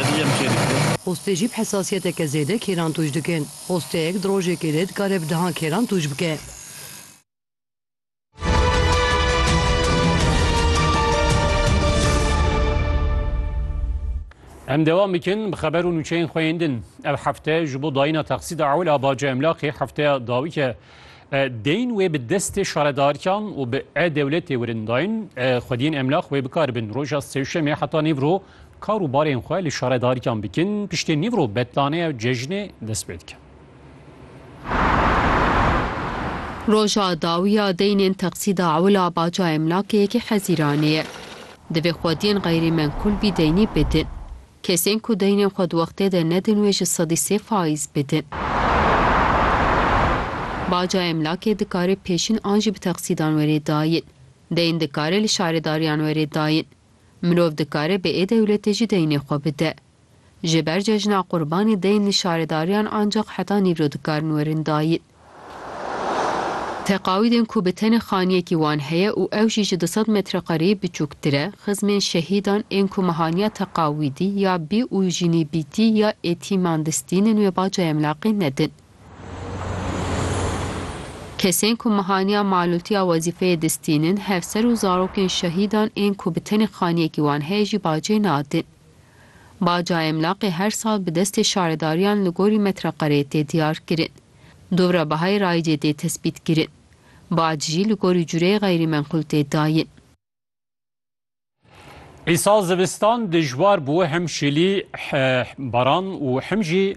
Xwestê jî bi hesasiyeteke zêde kêran tûj dikin. Xwesteyek di rojekê de dikare bi dehan kêran tûj bike. Em dewam bikin bi xeber û nûçeyên xwe yên din. Ev hefte ji bo dayîna texsîda ewil a baca emlakê hefteya dawî ke Deyên wê bi destê şaredarkan û bi e-dewletê wirin dayîn, xwediyên emlax wê bikar bin roja sêşemê heta nîvro kar û barên xwe li şaredarkan bikin, piştê nîvro betlaneya û cejnê dest pê dike. Roja dawiya deynên teqsîda ewila baca emlakê yekê Hezîranê ye. Divê xwediyên xeyrî menkul bî deynî bidin. Kesên ku deynên xwe di wextê de nedin wê ji sedî sê faiz bidin. Baca emlakê dikare pêşîn an jî bi teqsîdan were dayîn. Deyn dikare li şaredariyan were dayîn. Mirov dikare bi ê dewletê jî deynê xwe bide. Ji ber cejna Qurbanê deyn li şaredariyan ancax heta nîvro dikarin werin dayîn. Teqawîdên ku bi tenê xaniyekî wan heye û ew jî ji du sed metrekareyî biçûktir e, xizmên şehîdan ên ku mehaniya teqawîdî ya bî û jînîbîtî ya etîman distînin wê ba cayemlaqî nedin. Kesên ku mehaniya malûtiya wezîfeyê distînin, hevser û zarokên şehîdan ên ku bi tenê xaniyekî wan heye jî bacê nadin. Baca emlaqê her sal bi destê şaredariyan li gorî metreqareyê tê diyar kirin. Dora bihayê rayicê tê tesbît kirin. Bac jî li gorî cureyê xeyrîmenqul tê dayin. Îsal zivistan dijwar bû, him şilî, baran û him jî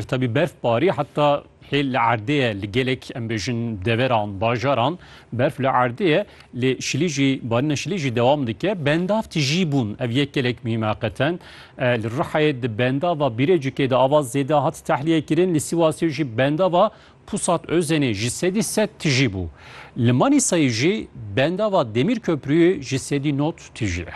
tevî berfbarî heta Hêl li erdê ye li gelek em bêjin deveran, bajaran berf li erdê ye lê şilî jî barîna şilî jî dewam dike. Bendav tijî bûn ev yek gelek muhîm heqeten. Li Rihayê di bendava Bîrecikê de ava zêde hat tehliyekirin. Li Sîwasê jî bendava Pusat Özenê ji sedî sed tijî bû. Li Manîsayê jî bendava Demîrköprûyê ji sedî nod tijî ye.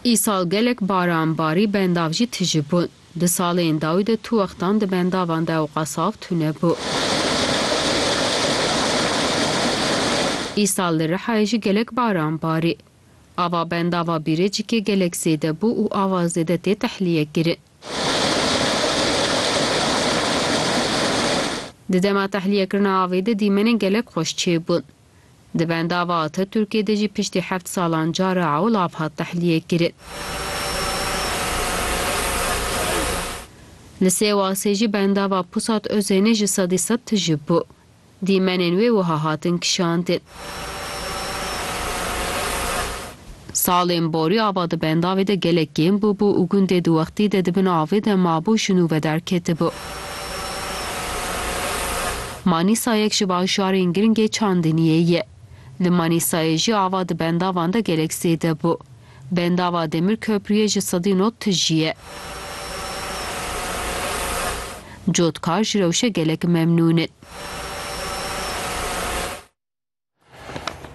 Îsal gelek baran barî bendav jî tije bûn. Di salên dawî de tu wextan di bendavan de ewqa saf tune bû. Îsal li Rihayê jî gelek baran barî. Ava bendava Bîrecikê gelek zêde bû û ava zêde tê tehlîye kirin. Di dema tehlîyekirina avê de dîmenên gelek xweş çêbûn. Di bendava Ataturkê de jî piştî heft salan cara ewl av hat tehliyêkirin. Li Sêwasê jî bendava Pusat Ozênê ji sedî sed tije bû. Dîmenên wê wiha hatin kişandin. Salên borî ava di bendavê de gelek kêm bûbû û gundê di wextî de di bin avê de mabû şinûve derketibû. Manîsa yek ji bajarên giringê Çandiniyê ye. Li Manîsayê jî ava di bendavan de gelek zêde bû. Bendava Demir Köprüyê ji sedî not tijî ye. Cotkar ji rewşe gelek memnûn in.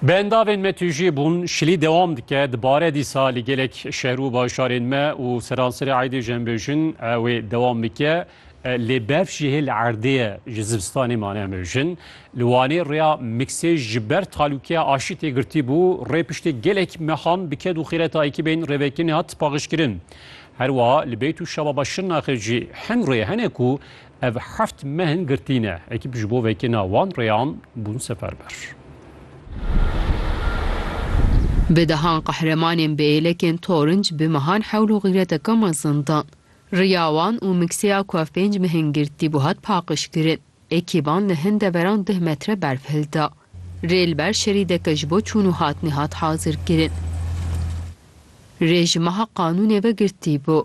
Bi endavên me tujî bûn şilî dewam dike dibare dîsa li gelek şer û bajarên me û seranserê aydê jembêjin wê dewam bike. Lê berf ji hêl erdê ye ji zivistanê mane em bêjin. Li Wanê rêya miksê ji ber talûkeya aşî tê girtî bû. Rê piştê gelek mehan bi ked û xîreta ekîbên rêvekinê hat paqijkirin. Herwiha li Beyt û Şababa Şirnaxê jî hin rê hene ku Ev heft mehin girtî ne. Ekîp ji bo vekirina wan rêyan bûn seferber. Bi dehan qehremanên bi êlekên torinc bi mehan hewl û xîreteke mezin dan. Riya wan û mikseya ku ev pênc mehin girtî bû hat paqijkirin. Ekîban li hin deveran duh metre berf hilda. Rê li ber şerîdeke ji bo çûn û hatinê hat hazirkirin. Rê ji meha qanûnê ve girtî bû.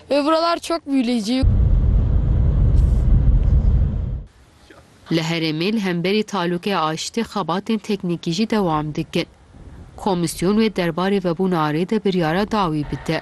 Ve buralar çok büyüleyici. Li herêmê li hemberî talûkê aştî xebatên teknîkî jî dewam dikin. Komîsyon wê derbarê vebûna rê de biryara dawî bide.